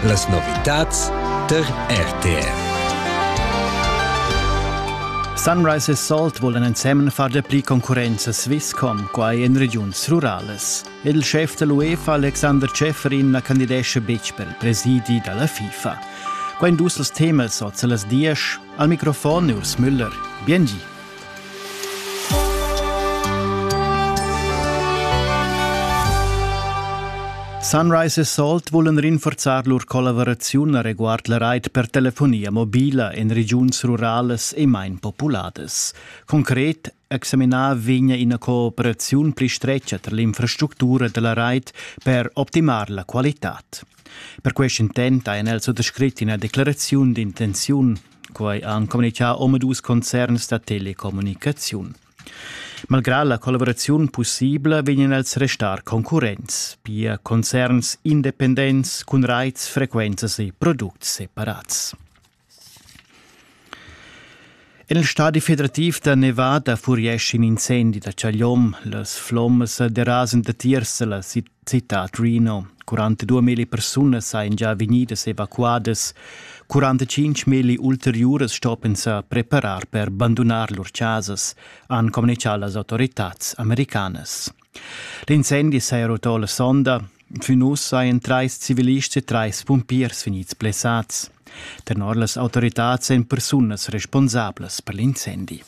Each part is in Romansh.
Las novitads tar RTR. Sunrise e Salt vulan ensemen far dapli concurrenza Swisscom, quai en regiuns ruralas. Ed il chef da l'UEFA Alexander Schäferin na candidescha betg per il presidi da la FIFA. Quai in dus als temas oz a las 10. Al microfon Urs Müller. Biengi. Sunrise e Salt vulan rinforzar lur collaveraziun reguard la rait per telefonia mobila en regiuns ruralas e main populadas. Concret examinar vegna ina cooperaziun pli stretga tar l'infrastructura della rait per optimar la qualitad. Per quest intent ha el also descrit ina declaraziun d'intenziun Quai han communitgà omadus concerns da telecommunicaziun. Malgrà la collaboraziun pussibla vegnan els restar concurrents, pia concerns independents cun raits, frequenzas e products separats. En il stadi federativ da Nevada furiescha in incendi da Chagliom. Las flommas derasan datiers da la Città a Trino. 42.000 persunas sajan già vegnidas evacuadas. 45.000 ulteriuras stoppen sa preparar per bandunar lur chasas, han communichà las autoritads americanas. L'incendi s'è rotto la sonda. Fin uss sajan trais civilists e trais pumpiers vegnids blessats. Tenor las autoritads èn persunas responsablas per l'incendi.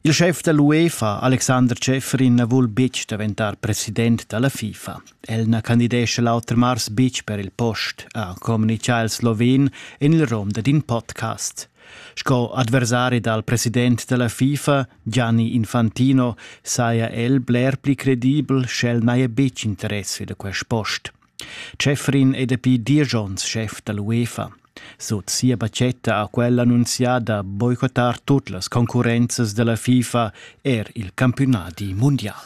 Il schef da l'UEFA, Alexander Schäfferin, na vul betg daventar president da la FIFA. El na candidescha l'auter mars betg per il post, ha communitgà il sloven en il rom dad in podcast. Sco adversari dal president da la FIFA, Gianni Infantino, saja el bler pli credibel sch'el n'haja betg interesse da quest post. Schäfrin è dapi diesch onns schef da l'UEFA. Sut sia batgetta ha quella annunzià da boicottar tut las concurrenzas da la FIFA er il campiunadi mundial.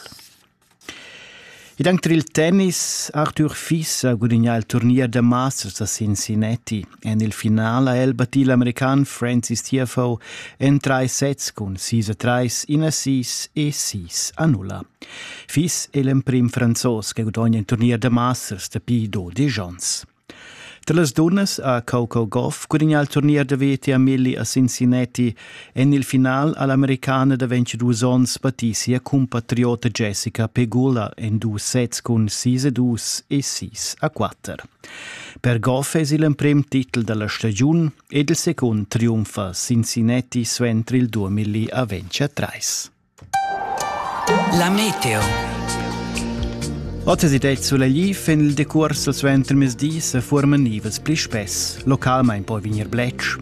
Ed anche il tennis Arthur Fis ha gudagnà il turnier da Masters a Cincinnati. En il final ha el battì l'american Francis Tiafoe en trais sets cun sis a trais, in a sis e sis a nulla. Fiss è l'emprim Franzos che gudogna in turnier da Masters dapi dodisch onns. Tra las dunnas ha Coco Goff gudagnà il turnier da veti a Milli a Cincinnati. En il final ha l'americana da 22 onns battì sia compatriota Jessica Pegula en dus sets cun 6 a 2 e 6 a 4. Per golf es il emprem titel da la stagiun ed il secund triumfa Cincinnati suenter il 2000 a ventscha trais. La meteo. Otas ed Suleliv en il decurs suenter mes dis forman nivels pli spess. Localmain poi vegnir bletsch,